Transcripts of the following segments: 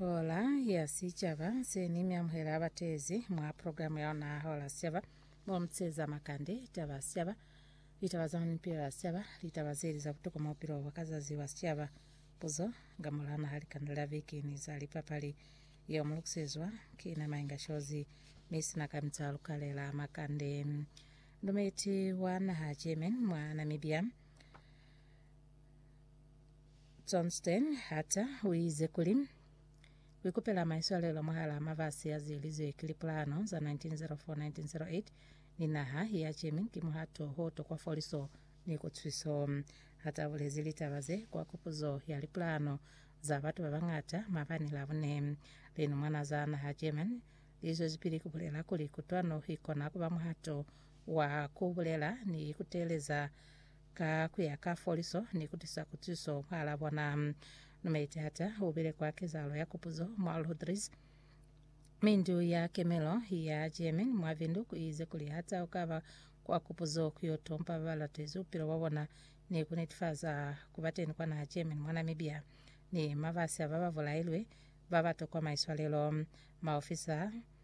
Hola ya Sicaba se ni mi amuhela abateezi mwa programu ya ona Hola Sicaba mo muteeza makande, taba sicaba, litaba za mipilo ya sicaba, litaba zeli za butuku mo bupilo bwa ka zazi bwa sicaba, puzo nga mola naha likanda la viki ni za lipapali yeo mu lukusezwa ki na Mainga Shozi mi sina kamita lukale la makande. Ndumeti wa naha German mwa Namibia Johnston Hatter uize kuli, Kuikupela maiswalelo mwahalaa mafasi azielizwe ki lipulano za 1904-1908 ni naha ya Germany ki muhato hoto kwa foliso ni kutuswiso. Hatter ubulezi litaba ze kwa kupuzo ya lipulano za batu babañata maabani Labone. Linumwana za naha Germany lizwezipili kubulela kuli kutwano ikona kuba muhato wa kubulela ni kuteeleza Ka ku ya ka foliso ni ku tisa kutiso mwahal'a bona, Numeitata u bile kwa kezahalo ya kupuzo mwa Lodriz, mi ndu ya kemelo ya German mwa Windhoek i ize kuli ha tau ka ba kwa kupuzo ku yo tompa ba ba latezi bupilo bwa bona ni ku netifaza ku ba teni kwa naha German mwa Namibia ni mabasi a ba ba bulailwe ba ba tokwa maiswalelo. Maofisa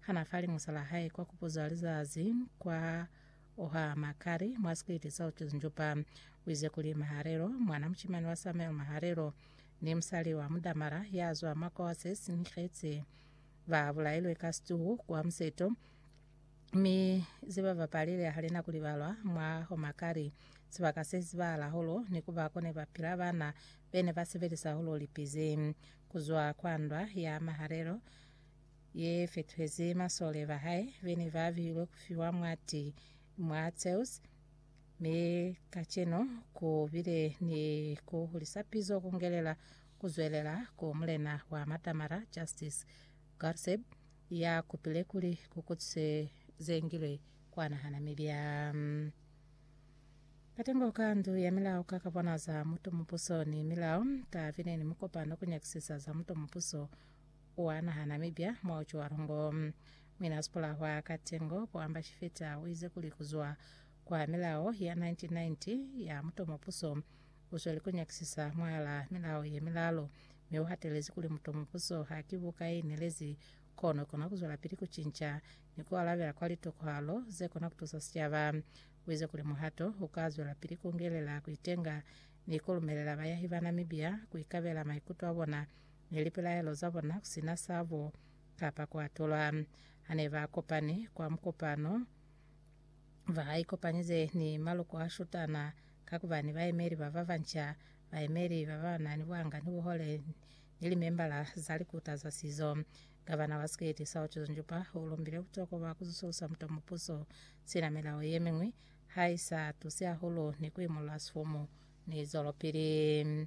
Hana fali musala hae kwa kupuza lizazi kwa oha makari mwa sikiti sa ucuzinjupa. Uize kuli Maharelo, mwana mucimani wa Samuel Maharelo, ni musali wa mudamara ya zwa mwa kwa se sinikhetsi, ba bulailwe ka situhu kwa museto, mi zebabapalile halina kuli balwa mwa homakari. Sibaka se sizibahala holo ni kuba kone bapila bana bene ba sebelisa holo lipizi kuzwa kwa ndwa ya Maharelo, ye fetwezi masole ba hae be ne ba bihilwe ku fiwa mwa ti mwa Zeus, mi kacenu ku bile ni ku hulisa pizo ku ngelela ku zwelela ku mulena wa matamara Justice Garseb ya kupile kuli ku kutswe ze ngilwe kwa nahana mi bya katengo ka ndu ya milao ka ka bona za mutu mupuso ni milao. Ka bile ni mukopano ku nyakisisa za mutu mupuso Ua naha Namibia mwa uco wa lungo. Mwina sipula hwa Katengo, Poamba Shifeta uize kuli kuzwa kwa milao ya 1990 ya muto mupuso usweli kunyakisisa mwalaa milao ye milalu, mi uhatelezi kuli muto mupuso haki buka ye inelezi kono ikona kuzwelapili kucinca ni kualabela kwa litokohalo zekona kutusa sicaba. Uize kuli muhato uka zwelapili kungelela kuitenga ni kulumelela bayahi ba Namibia kuikabela maikuto abona ni lipilaelo za bona ku si na sa bu ka pakuatulwa. Ha ne ba kopani kwa mukopano, ba ikopanyize ni maloko a shutana ka ku ba ni baemeli ba ba banca, baemeli ba ba na ni buhanga ni buhole, ni limembala za likuta za sizo. Gavana wa Siketi, Sauchus Njupa, u lumbile butokwa bwa ku zusulusa muta mupuso sina milao ye miñwi ha i sa tusi hahulu ni ku imolola sifumu ni zwelopili.